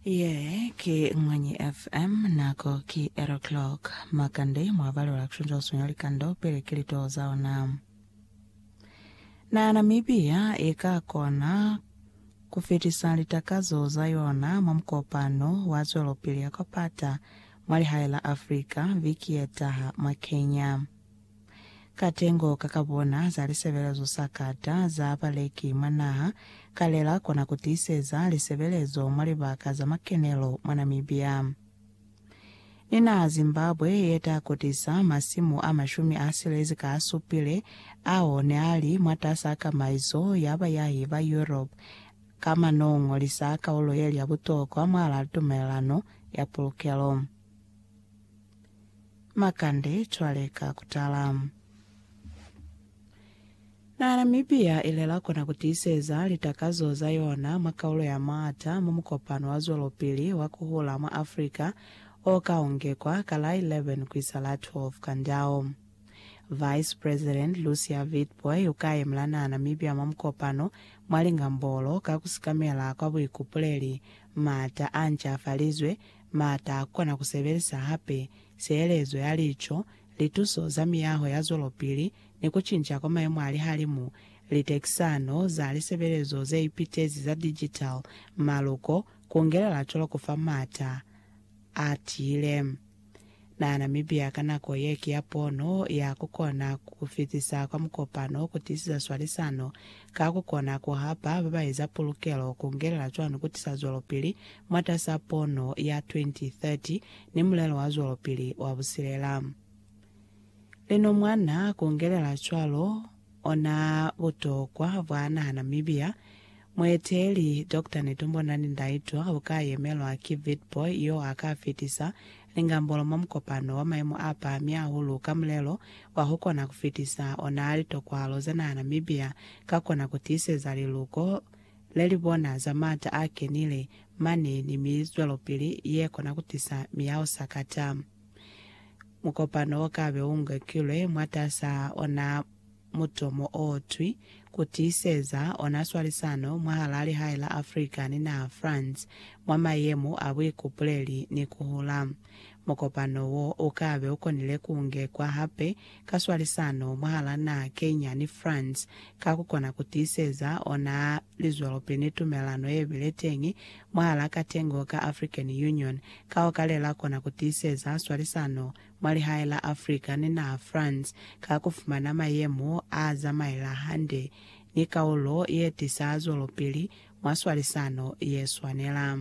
Ye ki Mwanyi FM, nako ki 8 o'clock. Makande mwa balelwa kushunja uswinyo wa likando pili ki litoho za ona. Na Namibia i ka kona ku fitisa litakazo za yona mwa mukopano wa zwelopili ya kwa pata mwa lihae la Africa viki ye taha mwa Kenya. Katengo ka ka bona za lisebelezo sa kata za baleki mwa naha kalela kona ku tiiseza lisebelezo mwa libaka za makenelo mwa Namibia ni naha Zimbabwe ye ta kotisa masimu a mashumi a silezi ka a supile ao ne a li mwatas'a kamaiso ya bayahi ba Europe ka mwa nongo li sa kaulo ye li ya butokwa mwal'a tumelelano ya pulukelo. Makande cwale ka kutala. Na Namibia ilela kona kutiiseza litakazo za yona mwa kaulo ya maata mwa mukopano wa zwelopili wa kuhula mwa Africa o ka ungekwa ka la 11 kuisa la 12 Kandao. Vice President Lucia Witbooi uka yemla na Namibia mwa mukopano mwa lingambolo ka kusikamela kwa buikupuleli, maata a ncafalizwe, Ma ta kona ku sebelisa hape sielezo ya lico, lituso za miyaho ya zwelopili, ni ku cinca kwa maemo a lihalimu, litekisano za lisebelezo ze ipitezi za digital, maluko, ku ngelela cwalo ku fa m'ata a tiile. Nahana mibya ka nako ye ki ya pono ya ku kona ku fitisa kwa mukopano ku tiisisa swalisano ka ku kona ku hapa ba ba eza pulukelo ku ngelela cwani ku tisa zwelopili mwatas'a pono ya 2030 ni mulelo wa zwelopili wa busilela. Lino mwa na ku ngelela cwalo, Ona butokwa bwa naha Namibia. Mueteeli, Doctor Netumbo Nandi-Ndaitwah uka yemelwa ki Witbooi yo a ka fitisa lingambolo mwa mukopano wa maimo a pahami hahulu ka mulelo wa ku kona ku fitisa ona litokwalo za naha Namibia ka kona ku tiiseza liluko le li bona za maata a kenile mane ni mizwelopili ye kona ku tisa miyaho sakata. Mukopano o ka be u ngekilwe mwataza ona mutomo o twi, Ku tiiseza ona swalisano mwahal'a lihae la Africa ni naha France mwa mayemo a buikupuleli ni ku hula. Mukopano wo u ka be u konile ku ngekwa hape ka swalisano mwahal'a naha Kenya ni France ka ku kona ku tiiseza ona lizwelopili ni tumelelano ye bile teñi mwahal'a katengo ka African Union ka ho ka le la kona ku tiiseza swalisano mwa lihae la Africa ni naha France ka ku fumana mayemo a zamaela hande ni kaulo ye tisa zwelopili mwa swalisano ye swanela.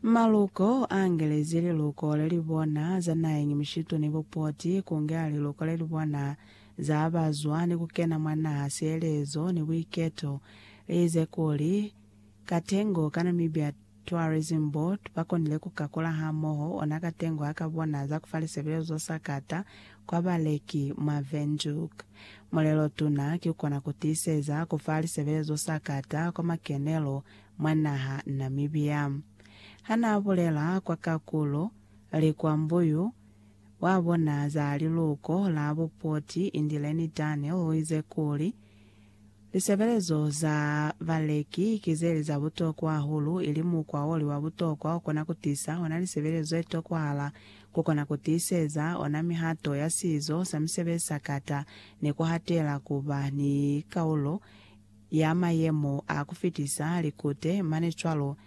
Maluko a ngelezi liluko le li bona za naheñi mushitu ni bupoti ku ngela liluko le li bona za ba zwa ni ku kena mwa naha sielezo ni buiketo. Li ize kuli, Katengo ka Namibia Tourism Board ba konile ku kakula hamoho ona Katengo ha ka bona za ku fa lisebelezo za sakata kwa baleki mwa Windhoek. Mulelotuna ki ku kona ku tiiseza ku fa lisebelezo sakata kwa makenelo mwa naha Namibia. Ha n'a bulela kwa kakulo li kwa Mbuyu, wa bona za liluko la bupoti Indileni Daniel u ize kuli, Lisebelezo za baleki ki ze li za butokwa hahulu ili mukwa o li wa butokwa o kona ku tisa ona lisebelezo ze tokwahala ku kona ku tiiseza ona mihato ya sizo sa misebezi sa kata ni ku hatela ku ba ni kaulo ya mayemo a ku fitisa likute mane cwalo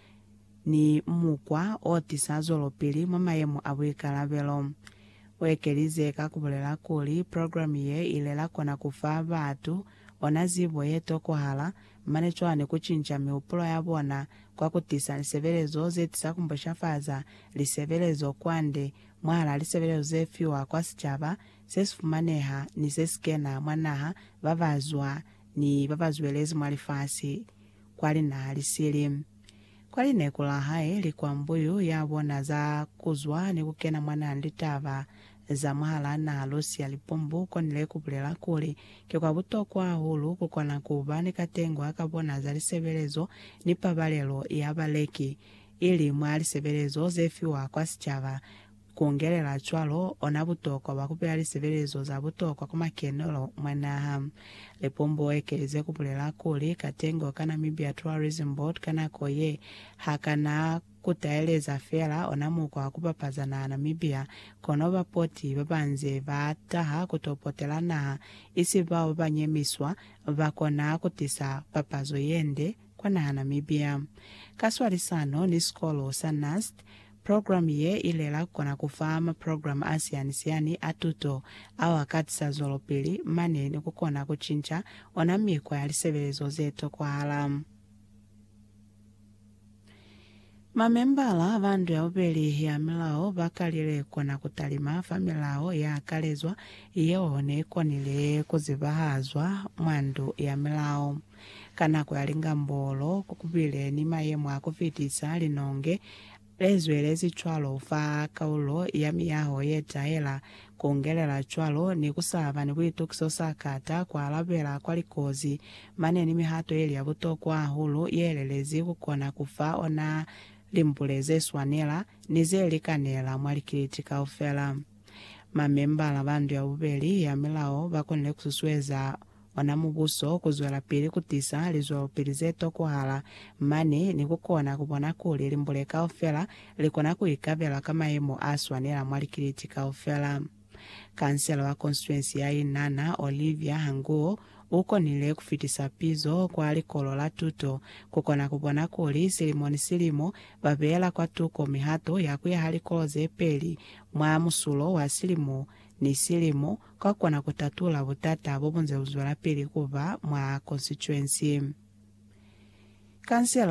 ni mukwa o tisa zwelopili mwa mayemo a buikalabelo. U ekelize ka ku bulela kuli, Programe ye i ile la kona ku fa batu ona zibo ye tokohala, mane cwalo ni ku cinca mihupulo ya bona kwa ku tisa lisebelezo ze tisa ku mboshafaza lisebelezo kwande mwahal'a lisebelezo ze fiwa kwa sicaba se si fumaneha ni se si kena mwa naha ba ba zwa ni babazwelezi mwa lifasi kwali naa lisili. Kwali neku la hae li kwa mbuyu ya bona za kuzwa ni kukena mwa nali litaba za mwahalaa naha Lucia Lipumbu konile kubulela kuli, Ki kwa butokwa hahulu kukona kuba ni katengwa ka bona za lisebelezo ni pabalelo ya baleki, ili mwa lisebelezo zefiwa kwa sicaba, Ku ongelela cwalo, ona butokwa bwa ku beya lisebelezo za butokwa kwa makenelo mwa naha. Lipombo u ekeleze ku bulela kuli, Katengo ka Namibia Tourism Board ka nako ye ha ka na ku taeleza feela ona mukwa wa ku bapaza naha Namibia, kono bapoti ba ba nze ba taha ku to potela naha, isi bao ba ba nyemiswa, ba kona ku tisa papazo ye nde kwa naha Namibia. Ka swalisano ni sikolo sa NUST, Programe ye ilela kukona kufa maprograme asiani-siani a tuto ao akatisa zwelopili mane ni kukona kucinca ona mikwa ya lisebelezo ze tokwahala. Mamembala ba Ndu ya Bubeli ya Milao bakalile kukona kutalima fa milao ya kalezwa yeo ne ikonile kuzibahazwa mwa Ndu ya Milao. Ka nako ya lingambolo, ku kubile ni mayemo a ku fitisa, linonge le zwelezi cwalo fa kaulo ya miyaho ye tahela ku ngelela cwalo ni ku sa ba ni buitukiso sa kata ku alabela kwa likozi. Mane ni mihato ye li ya butokwa hahulu ye lelezi ku kona ku fa ona limbule ze swanela ni ze likanela mwa likiliti kaufela. Mamembala ba ndu ya bubeli ya milao ba konile ku susueza ona Mubuso kuzwelapili kutisa lizwelopili zetokwahala mane ni kukona kubona kuli limbule kaufela likona kuikabela ka mayemo aswanela mwa likiliti kaufela. Kansela wa konstituensi ya Inhana, Olivia Hanguo, ukonile kufitisa pizo kwa likolo la tuto kukona kubona kuli silimo ni silimo babeela kwatuko mihato ya kuyaha likolo zepeli mwa musulo wa silimo ni silimo kwa kona ku tatula butata bo bu nze bu zwelapili ku ba mwa konsituensi. Kansela